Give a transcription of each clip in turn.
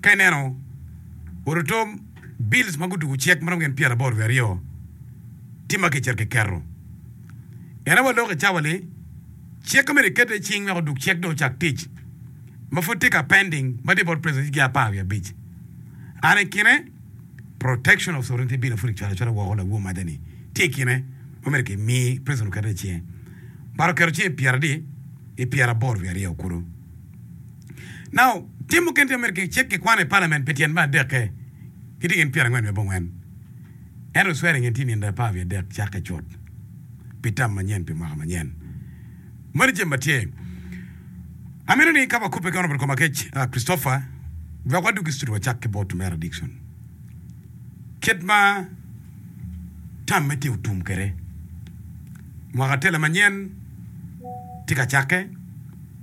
Ka ineno oruto bills ma gutugo cek ma romo gin pyeraboro wiye aryo tye ma kicito kiketo. Ene wa lok i cawa ni cik ma myero eketo iye cing wek odug cek dong ocak tic ma pud tye ka pending ma tye bot president jige apar wiye abic. An i kine protection of sovereignty bill ma pud kicwalo acwala woko lawo maja ni tye i kine ma myero kimi president oket iye cinge. But oketo cinge i pyera adi? I pyeraboro wiye aryo kulu. Now, tim mukene tye ma myero kicik kikwano i palament pi tyen me adekke, gitye gin pyerangwen me abongwen. Ento swearing in tye nino apar wiye adek cakke cut pi tam manyen pi mwaka manyen. Moni jami ma tye. Amito ni ka wakubbe ki Honourable Komakec Christopher, wek wadug i studio wacak ki bot Mera Dickson. Kit ma tamme tye otum kwede, mwaka tele manyen tye ka cakke.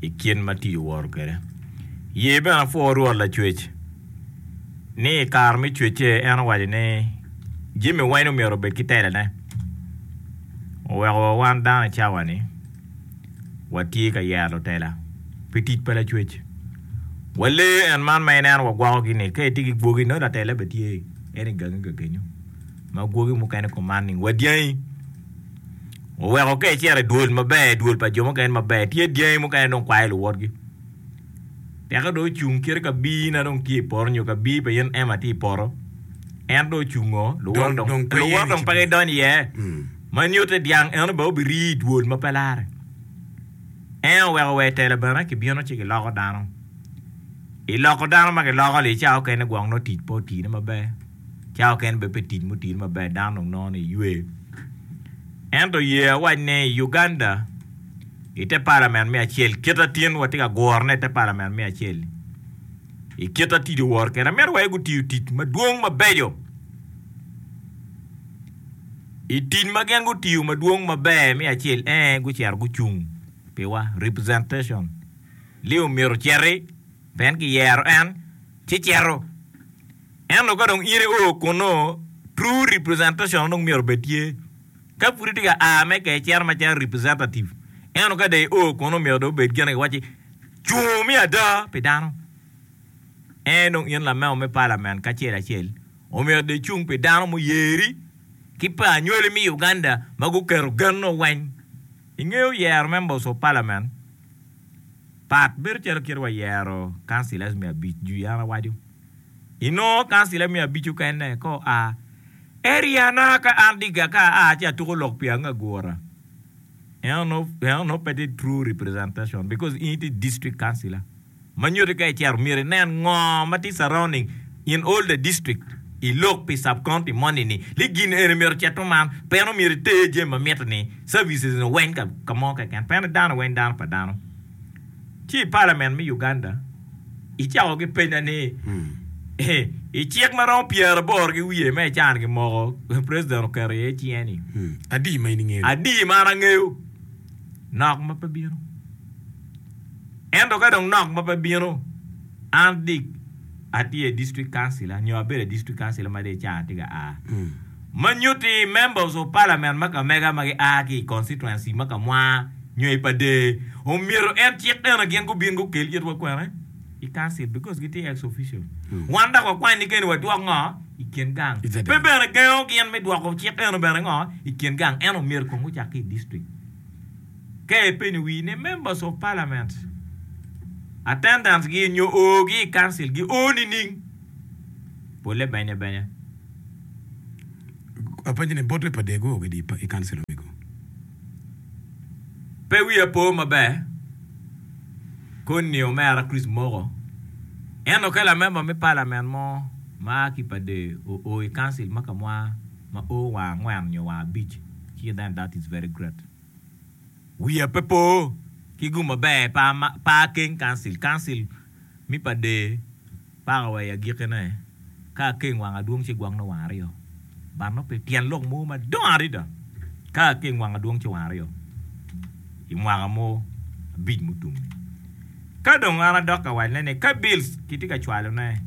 i kit ma tic owoto kwede. Ye bene apwoo Rwot Lacwec ni i kare me cwecce en owaco ni jami weng myero obed ki telone. Oweko wa wan dano i cawa ni watye ka yero lutela pi tic pa Lacwec. Wa lee en man ma ineno wa gwoko gi ni ka itye ki gwogi nongo latela bene tye en i gangi ka kenyo ma gwogi mukene kuman ni wadyangi. oweko ka ecito i dwol maber i dwol pa jo mukene maber tye dyangi mukene dong kwayo luwotgi teke dong ocung kit ka bii na dong tye i poto nyo ka bii pa in Emma tye i poto en dong ocung oo luwot dong dong pe luwot ye dong pe kicibo. gidonyo iye ma nyutte dyang eno bene obirii i dwol ma pe lare en oweko wa i tela bene kibino ci kiloko dano i loko dano ma kiloko-li cawa mukene gwok nongo tic pe otine maber. cawa kene bene pe tic mutidi maber dano dong nongo ni iywe. Ento ye awac ni i Uganda i te parliament me acel kit atin watye ka guro ne i te parliament me acel i kit atidi owor kede amito waye gutiyo tic madwong mabeco i tic ma gin gutiyo madwong maber me acel en gucito gucung piwa representation leo myero ociti pien kiyero en ci cito. Ento ka dong ite oo kunnu, true representation dong myero obed tye. Ka pud itye ka a me ka icito macalo representative, ento ka dong io kunnu myero dong obed gin ma kiwaco ni cung me ada pi dano. En dong in lamego me Parliament kacel acel omyero dong icung pi dano muyeri ki pa anywali me Uganda ma guketo genno weng. Ingeyo yero members of Parliament pat bedo calo kit wayero councillors me abic jwi an awaco. I nongo kancila me abico kene ka oa, eri ana ka an diga ka aa ci atuko lok pi ange agura. Eno no, eno no pe tye true representation because in itye district councilor. Ma nyuti ka icito myero inen ngo ma tye surrounding in all the district. I lok pi sub county moni ni li gin eni myero ocito man. Pe eno myero iter jami ma miti ni services ni weng ka mo keken. Pe eno dano weng dano pa dano. Ci i palament me Uganda icako gipenya ni i cik ma romo pyeraboro ki wiye ma i can gi moko president oketo iye cinge ni Adi ma in ingeyo? Adi ma an angeyo? Nok ma pe bino. Ento ka dong nok ma pe bino, an Dick. Atye district councilor nyo abedo district councilor ma dong ica atye ka a. Ma nyutti members of parliament ma kamega ma gia ki i constituency ma kamwa nyo i Padee omyero en cik eno gin gubin gukel itwa kwene i council because gitye ex official. Wan dok wakwanni keni wadwok ngo i kin gang. Pe bene gengo gin me dwoko cik eno bene ngo i kin gang eno myero kong gucak ki i district. Ka ipenyo wii ni members of parliament attendance gi nyo oo gi i council gi oo nining? Pole benye benye. Apenyo ni bote pa dego oo gi di i council omego? Pe wiya po maber koni ni omera Chris moko eno ka la member me parliament mo ma aa ki pa dee oo i council ma ka mwaa ma oo wa angwen nyo wa abic ki then that is very great. Wiya pe po ki gum maber pa Akeng Council, Council me pa Dee paka wa i agikine. Ka Akeng wang adwong ci gwokne wang aryo. But nongo pi tyen lok mo madongo adada, ka Akeng wang adwong ci wang aryo i mwaka mo abic mutum-mi. Ka dong an adok ka wacne ni, Ka Bills kitye ka cwalone,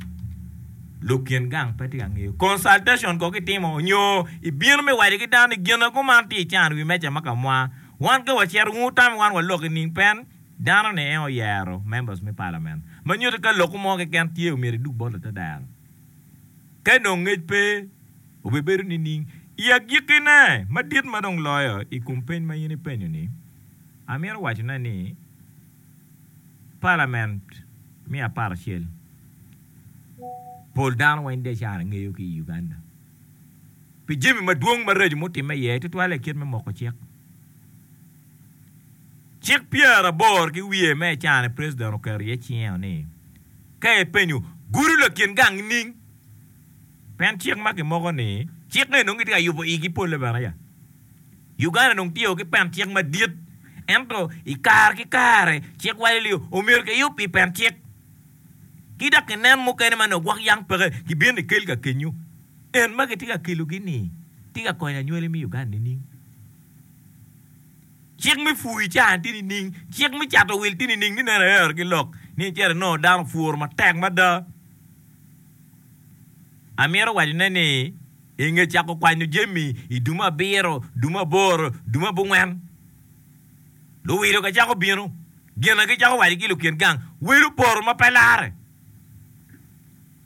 lok kin gang pe tye ka ngeyo consultation kong itimo nyo ibino me waco ki dano ni gin ago man tye ican wi meja ma ka mwa. Wan ka wacito wun wutamo wan walok i ning pen dano ni en oyero members me parliament ma nyuto ka loko mo keken tye omyero idug bot latadero ka dong ngec pe obe bedo nining. I agiki ne madit ma dong loyo i kom peny ma in ipenyo ni, amito wacone ni, Palament me aparacel, pol dano weng decara ngeyo ki i Uganda pi jami madwong maraco mutimme iye tutwale i kit me moko cik. Cik pyeraboro ki wiye me i caa-ni president oketo iye cinge-o ni, ka ipenyo gudo lakin gang nining Pien cik ma kimoko ni. Cik eni nongo gitye ka yubo igi pole bene ya. Uganda dong tye o ki pen cik madit ento i kare ki kare cik waco ni omyero kiyub i pen cik ki dok kinen mukene ma nongo gwok yang peke kibino kikel ka kenyo. En ma kitye ka kelo gi ni tye ka konyo anywali me Uganda nining? Cik me pwuyi cani tye nining? Cik me cato wil tye nining ni neno ayer ki lok ni cito inongo dano pwuru matek mada? Amito wacone ni i nge cako kwanyo jami i dumo abiro, dumo aboro, dumo abongwen, luwilo gacako bino, gina gicako waco ki lukin gang, Welo poro ma pe lare!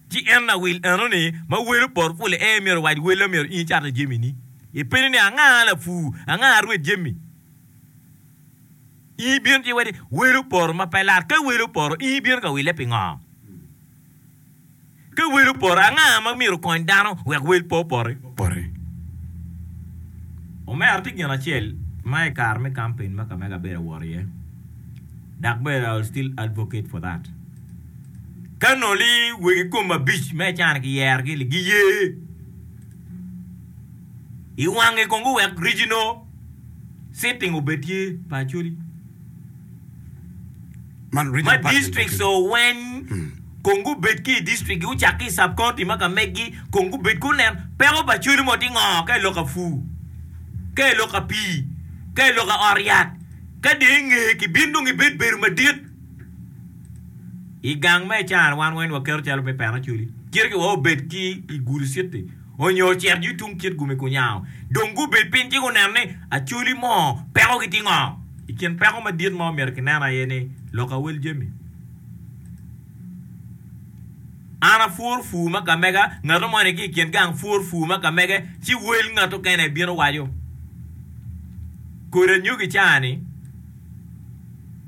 Ci en lawil enoni ma welo poro pule ee myero owac wella myero in icatta jamini. Ipenyo ni anga lapur, anga arwed jami? In ibino ci iwaco ni welo poro ma pe lare. Ka welo poro, in ibino ka wile pingo? Ka wel opore, anga ma myero okony dano wek wel pe opore? Omera tye gin acel ma i kare me kampen ma kamege abedo awot iye, dok bene I will still advocate for that. Ka nongo ni wegi kom abic ma ican kiyerogi-ni giye i wangi kong guwek regional sitting obed tye pa Acholi. ma distrikts oweny kong gubed ki i distriktgi gucak ki i sub county ma ka meggi kong gubed ku nen peko pa cwali mo tye ngo ka iloko apur ka iloko apii ka iloko ot yat ka dong inge ki bin dong ibed bedo madit igang me icara wan weng waketo calo me pena cwali cito ki wa obed ki i gulu city. onyo ocito yung tung kit gumi kunyango. Dong gubed piny ci gunen ni acholi mo peko gi tye ngo. I kin peko madit ma omyero kinen aye ni lok awel jami. An apwor pur ma kamega, ngato mo ni ki i kin gang pwor pur ma kamege ci wel ngato kene bino waco kodi anyogi caa ni.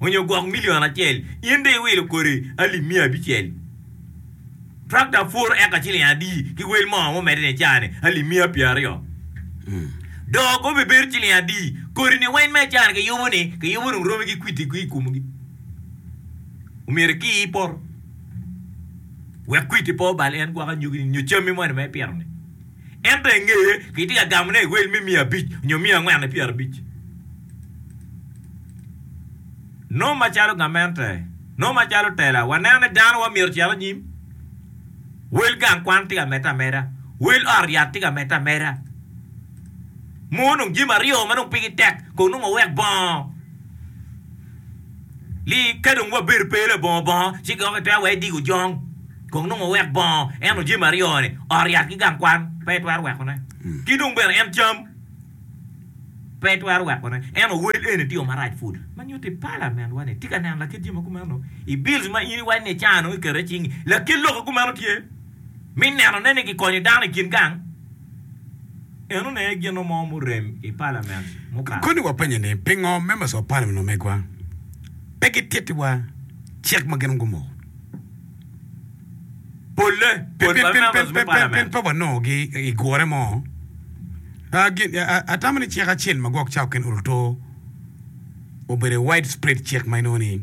onyo gwok milion acel, in dong iwilo kodi alip miya abicel. Trakta pur eka ciling adi ki wel mo ma omedde ni icaa-ni? Alip miya pyeraryo. Dok obibedo ciling adi? Kodi-ni weng ma icaa-ni kiyubo-ni, kiyubo dong romi ki kwiti ki i komgi. Omyero ikii i poto wek kwiti pe obal en gwok anyogi-ni nyo cammi moni ma ipito-ni. Ento i ngeye, kitye ka gamone i rweny me miya abic nyo miya angwen i pyerabic. Nongo macalo gamente, nongo macalo tela, waneno ni dano wamyero ocit anyim. Wel gang kwan tye ka medde ameda. Wel ot yat tye ka medde ameda. Mono dong jami aryo ma dong pigi tek kono nongo wek bongo. Li ka dong wabedo pe labongo bongo, ci dok itwero were digo jong kong nongo wek bongo eno jami aryo-ni, ot, yat ki gang kwan, pe itwero wekone. Ki dong bene en cam, pe itwero wekone. Eno wel eni tye yo marac pud. Ma nyutti palamentwa ni tye ka neno lakit jami ma kumeno i bills ma in iwaco ni icano ikete i cingi. Lakit lok-ki kumeno tye Mi nenone ni gikonyo dano i kin gang, en oneye gino mo murem i palament mukato. Koni wapennye ni, pingo members of parliament omegwa pe gitittiwa cik ma gin gumoko? Polle, kodi pa members me palament. Pien pe wanongo gi i gure mo. Atamo ni cik acel ma gwok ca oken oruto obedo i widespread cik ma inongo ni.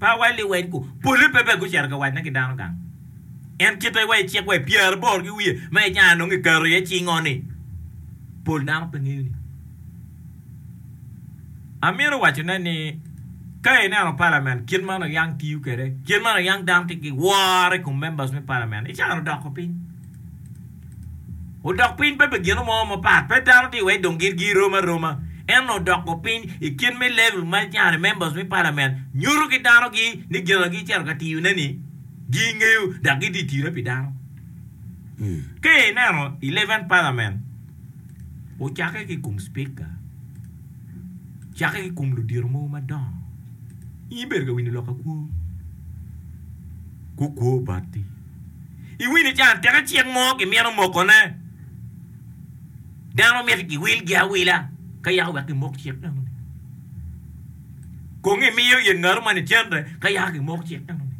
Pa wa Liwedgu, polle pe bene gucito ka wacne ki dano gang. En kite wa i cik wa i pyeraboro ki wiye ma i caa nongo iketo iye cingo-ni, pol dano pe ngeyo ni. Amito wacone ni ka ineno palament kit ma Oyang tiyo kwede, kit ma Oyang dano tye ki woro i kom members me palament, icaro doko piny. Odok piny pe pi gino mo mapat, pe dano tye iye dong gin girom aroma, ento odoko piny i kit me level ma cani members me parliament nyuto ki dano gi ni gin ma gicito ka tiyo ne ni gi ngeyo dok gi tye tire pi dano. Ka ineno eleven parliament ocake ki kom speaker, cake ki kom ludito mogo madongo, in ibedo ka winyo lok akwo, gukwo bati. Iwinyo can teke cik mo kimito mokone? Dano mito giwilgi awila ka yaka wek gimok cik enoni. Kong imiyo ye ngatu man icente ka yaka gimok cik enoni.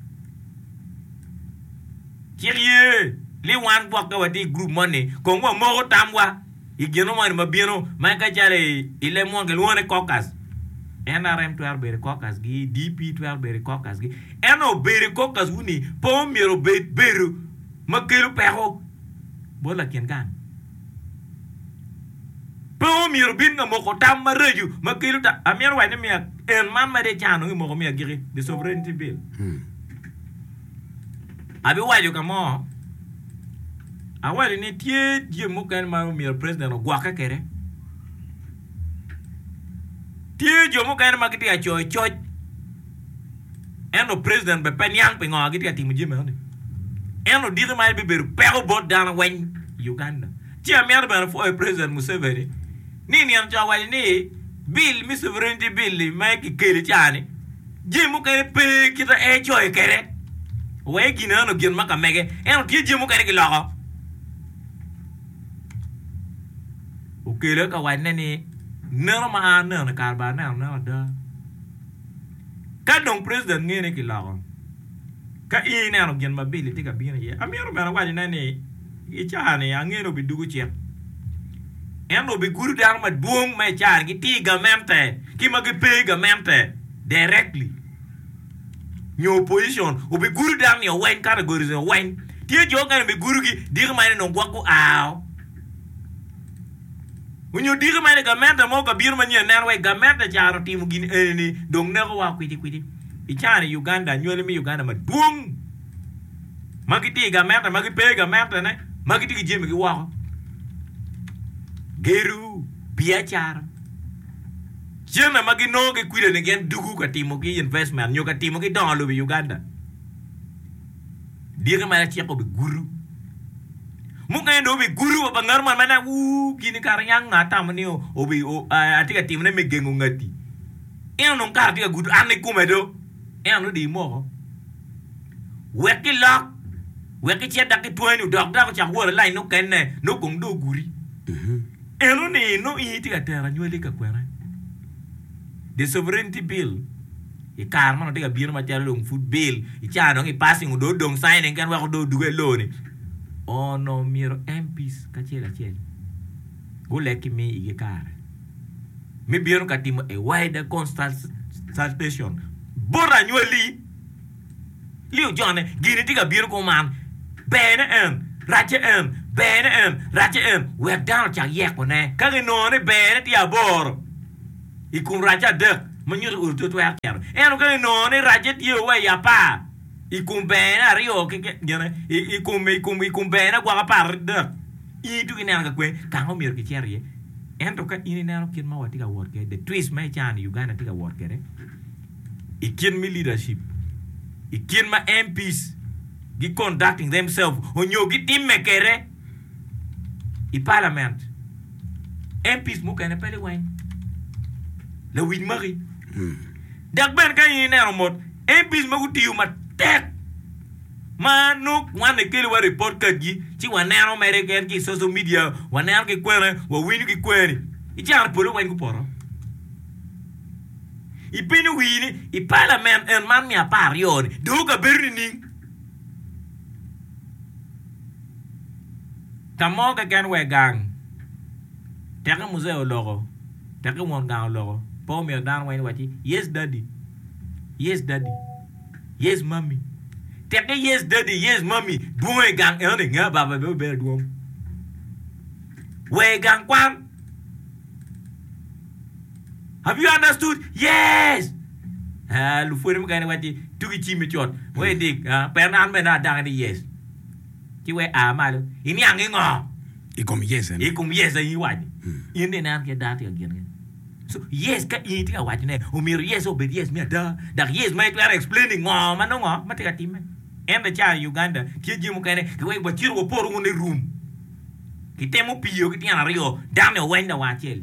Cik ye ni wan gwokke watye i gurup moni kong wamoko tamwa. i genungwani ma bino, ma ka calo i leb munu kilwongo ni caucus. NRM twero bedo i caucus gi, DP twero bedo i caucus gi. Ento bedo i caucus wuni pe omyero obed bedo ma kelo peko bot lakin gang. Pe omyero obin ka moko tam maraco ma kelo ta. Amyero wac ni miya en man ma de cano ngi moko miya agiki, the sovereignty bill. Abiwaco ka mo, awaco ni tye jami mukene ma myero president ogwokke kwede. Tye jo mukene ma gitye ka coyo coc ento president bene pe niang pingo gitye ka timo jami enoni. En odiki man bibedo peko bot dano weng i Uganda. Ci amito bene pwoyo president Museveni ni nino co owaco ni bill me sovereignty bill ma kikeli cani, Jami mukene pe kit ma en ecoyo kwede, wek gin eno gin ma ka mege, ento tye jami mukene giloko. Okele ka wacne ni, Neno ma an aneno-ni kare bene aneno anena ada. Ka dong president ngene kiloko, Ka in ineno gin ma Billy tye ka bino iye, amito bene awacine ni i caa-ni ange ni obidwogo cik. En obigudo dano madwong ma i caa-ni gitye i gamente ki ma gipe i gamente directly nyo opposition. Obigudo dano nio weng, categories nio weng. Tye jo mukene obigudogi diki ma en onongo gwok gua-o. Onyo diki mene gamente mo ka bino manyen? Neno wek gamente caro timo gin enini dong neko wa kwiti kwiti. I cani Uganda anywali me Uganda madwong ma gitye i gamente ma gipe i gamente ne ma gitye ki jami gi woko. Gedo, biacara, cene ma ginongo ki kwidani gin dugu ka timo ki investment nyo ka timo ki dongo lobo i Uganda. Dyeke ma lacek obigudo. Mukene dong obigudo wa pa ngat man ma nen uu gini kara niang nga atamo ni obi atye ka timone me gengo ngati. En onongo kara tye ka gudo an ikome do. En onongo dii moko. Wek ki lok wek ki cet dak ki twanyi odok dako ocako wot alany nokenne nongo kong dong ogudi. En onino in itye ka tero anywali ka kwena. The Sovereignty Bill, I kare ma dong tye ka bino macalo dong pud bill, i ca dong i passing onongo dong odong signing keken weko dong odugge loo-ni, onongo myero MPs kacel acel guleg ki mi igi kare me bino ka timo a wider consultation bot anywalli. Li ojone gini tye ka bino kuman, berne en, racce en, berne en, racce en, wek dano ocak yekone. Ka ginongo ni berne tye aboro i kom racce adek, ma nyuto ur to twero cito. Ento ka ginongo ni racce tye wa i apar i kom berne aryo keken, i kom i kom berne gwok apar adek, in ituki ineno ka kwen ka ma myero kicit iye. Ento ka in ineno kit ma watye ka wot kwede, the twist ma icanno ni Uganda tye ka wot kwede, i kit me leadership, i kit ma MPs gi conducting themselves onyo gi time kede i parliament. MPs mukene pe liweny, lawic maki. Dok bene ka in ineno mot MPs ma gutiyo matek ma nongo wan ekeli wa report card gi ci wa neno mere keken ki i social media, wa neno ki kwene, wa winyo ki kwene ni, i caro pol liweny gupoto. Ipenyo wii ni, 'I palament en man me apar aryo-ni, dong okabedo nining? Ka mo keken wa i gang, teke muzee oloko, teke won gang oloko, pe omiyo dano weng waci, 'Yes, Daddy. Yes, Daddy. Yes, Mummy. Teke Yes, Daddy. Yes, Mummy dwong i gang enoni, nge ababa bene obedo adwong. Wa i gang kwan. Have you understood? Yes! Ah, lupwode mukene wacci ni, Tugi cimmi cut. Wek idik. Ah, pera an bene adakki ni yes. Ci wek a malo. Iniang i ngo? I kom yes eni. I kom yes eni iwaco. In ni ineno kit dano tye ka gin kene. So, yes ka in itye ka waco ne, omyero yes obed yes me ada. Dak yes ma itwero explain i ngo ma nongo ma tye ka timme. En be ca i Uganda, tye jami mukene ki wek wa cito wa poro wunu i room. Ki temo piyo ki tyen aryo, dano ni oweny lawa acel.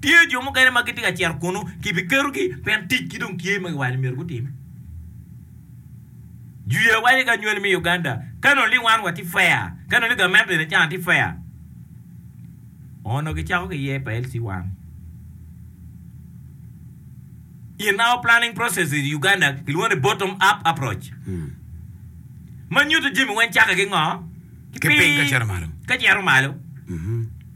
Tye jo mukene ma gitye ka cito kunnu, kibiketogi pien ticgi dong tye ma kiwaco ni myero gutime. Juya waco ki anywali me Uganda, Ka nongo ni wan watye fair, ka nongo ni gamente bene can tye fair, onongo gicako ki year pa LC one. In our planning process in Uganda kilwongo ni bottom up approach, ma nyuto jami weng cakke ki ngo? Ki piny ka cito malo.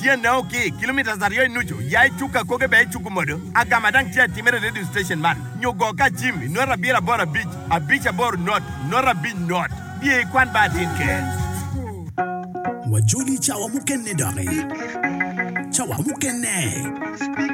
Tyene o ki kilometres aryo i nucu, ya i cuk akoge bene icuku modo. Agama dang tye atimere i radio station man nyo go ka jim i nota abiro aboro abic, abic aboro not, nota abic not. Biye i kwan ba atin ker. Wajoli cawa mukene doki. Cawa mukene.